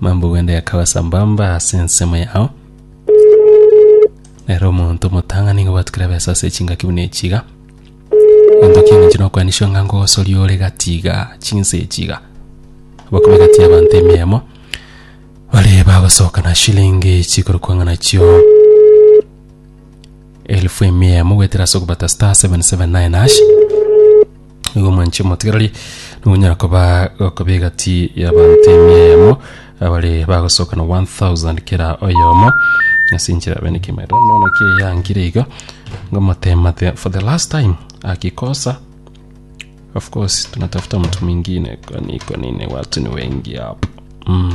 Mambo gwende yakabasa mbamba ase ensemo yao. Nero omonto omotang'ani nigo gwatukire ebesa ase chingaki buna echi iga. Ento kieng'encho nokwanisio ng'a ngogosoria ore gati iga chinsa echi iga. Bakube gati y'abanto emiyemo. Bare bagosoka na shilingi chikorokwa ng'a nachio. Elfu emia emo goetera ase okobata star 779 hash igo mwanche motigarari nogonyara koba gokoba egati y'abanto emia emo abare bagosoka na 1000 kera oyomo ase enchera yabe niki maete nono ki eyangire iga ngomotema the, for the last time akikosa of course tunatafuta mtu mwingine kwani kwa nini watu ni wengi hapa mm.